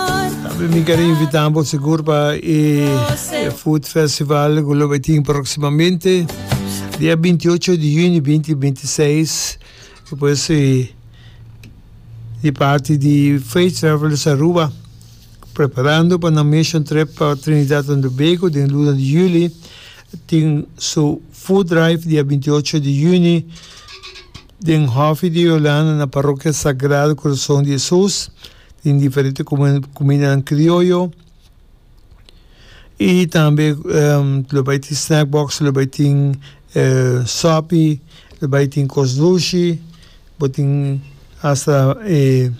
Tambe mi ker invita bo sigur pa e Food Festival ku lo bay tin próximamente dia 28 di junio 2026 pues di parte di Faith Travelers Aruba preparando pa na mission trip pa Trinidad and Tobago den luna di juli tin su food drive dia 28 di junio den Hof di Yolanda na Parroquia Sagrado Corazón de Jesus Tin diferente kumindanan krioyo i tambe lo bai tin snack box, lo bai tin sòpi, lo bai tin kos dushi, bo tin hasta e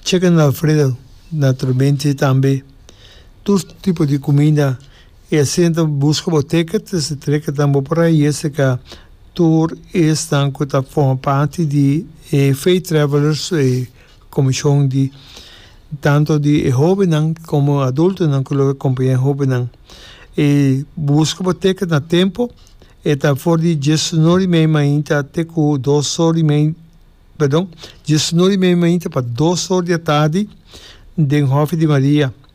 chicken alfredo, naturalmente tambe tur tipo di kuminda. I asinta bo buska bo ticket, esei ticket nan bo por a hese ca tur esnan cu ta forma parti di e Fey Travelers e comishon di tanto di e hobennan como adultonan cu lo acompaña e hobennan. I buska bo ticket na tempo, e ta for di diesuno di mei mainta te cu dos or di mei, perdon, diesuno di mei mainta pa dos or di atardi den Hof di Maria.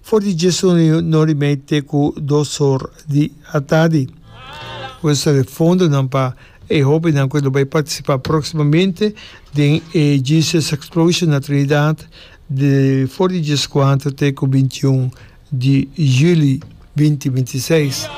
For di djes un riu no rimei te ku dos or di atadi. Pues sali fondonan pa e hóbennan ku lo bai partisipá próksimamente den e Jesus Explosion na Trinidad di for di djes kuater te ku bintiun di juli binti binti seis.